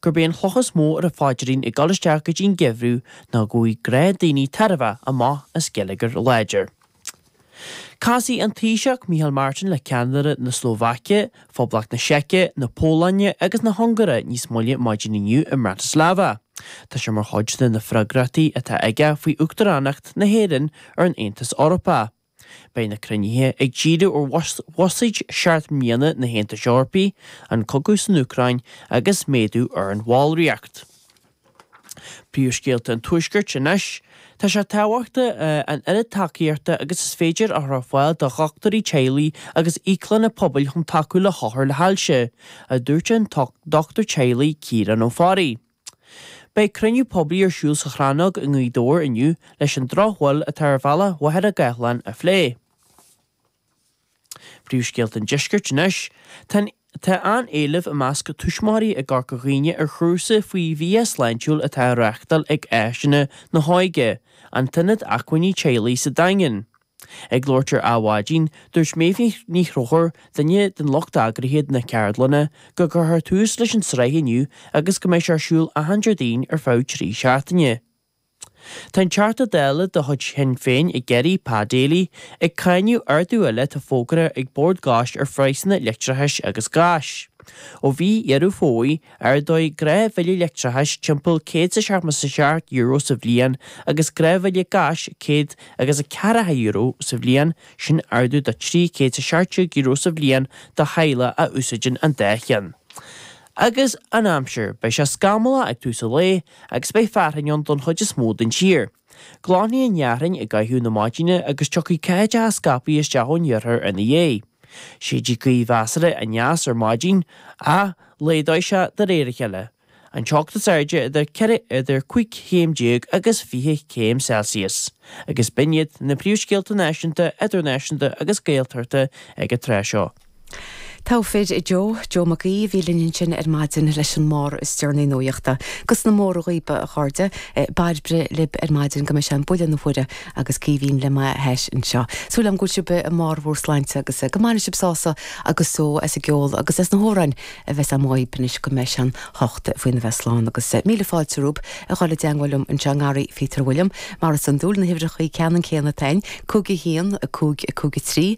gurb é an chloch is mó ar a phaidrín ag dul isteach go dtí an geimhreadh ná go bhfaighidh gnáthdhaoine tairbhe amach as geilleagar láidir. Casfaidh an Taoiseach, Micheál Martin, le ceannairí na Slóvaice, Phoblacht na Seice, na Polainne agus na hUngáire níos moille maidin inniu i mBratislava. Tá sé mar chuid de na freagrachtaí atá aige faoi Uachtaránacht na hÉireann ar an Aontas Eorpach. Beidh na cruinnithe ag díriú ar bhuiséad seacht mbliana na hAontais Eorpaigh, an cogadh san Úcráin agus méadú ar an bhallraíocht. Príomhscéalta an Tuaiscirt anois, Tá sé tábhachtach an oiread tacaíochta agus is féidir a chur ar fáil do dhochtúirí teaghlaigh agus íoclanna pobail chun tacú le hothar le hailse, a dúirt an dochtúir teaghlaigh Ciarán Ó Fearraigh. Beidh cruinniú poiblí ar siúl sa Chrannóg i nGaoth Dobhair inniu leis an drochbhail atá ar bhealach Mhachaire Gathlán a phlé. Príomhscéalta an Deiscirt anois, Tá an-éileamh i measc tuismitheoirí i gCorca Dhuibhne ar chúrsa faoi bhia sláintiúil atá á reáchtáil ag Áiseanna na hÓige, an t-ionad acmhainní teaghlaigh sa Daingean. Ag labhairt ar Adhmhaidin, dúirt Méabh Ní Chonchúir, duine den lucht eagraithe na ceardlainne, go gcuirfear tús leis an tsraith inniu agus go mbeidh sé ar siúl achan Déardaoin ar feadh trí seachtaine. Tá an Teachta Dála de chuid Shinn Féin i gCiarraí, Pa Daly, ag cáineadh ardú eile atá fógartha ag Bord Gáis ar phraghsanna leictreachais agus gáis ó mhí Dheireadh Fómhair Ardóidh gnáthbhille leictreachais, timpeall €177 sa bhliain, agus gnáthbhille gáis, céad agus a ceathracha euro sa bhliain, sin ardú de €317 sa bhliain do theaghlaigh a úsáideann an dá cheann. Agus an aimsir, beidh sé scamallach ag tús an lae agus beidh fearthainn ann don chuid is mó den tír. Glanfaidh an fhearthainn i gcaitheamh na maidine agus tiocfaidh ceathaideacha scaipthe isteach ón iarthar ina dhiaidh. Séidfidh gaoth mheasartha aneas ar maidin, ach laghdóidh sé de réir a chéile. An teocht is airde idir 4 idir 15 chéim agus 20 céim Celsius. Agus b'in iad na príomhscéalta náisiúnta, idirnáisiúnta agus Gaeltachta ag an tráth seo. Togha fir, a Joe, Joe Mac Aoidh a bhí linn ansin ar maidin leis an mbarr is deireanaí nuaíochta. Agus na mora dhaoibh, a chairde, Bairbre libh ar maidin go mbeidh sé an buille na huaire agus Caoimhín le m'ais anseo. Súil agam go bhfuil sibh i mbarr bhur sláinte agus go mbainfidh sibh sásamh agus só as an gceol agus as na hamhráin a bheas agam daoibh anois go mbeidh sé an hocht faoina bheith slán agus míle fáilte romhaib a dhul i dteangmháil liom anseo i ngarraí Pheter William mar is iondúil na huimhreachaí ceannan céanna atá againn, 5 1, 5 5 3.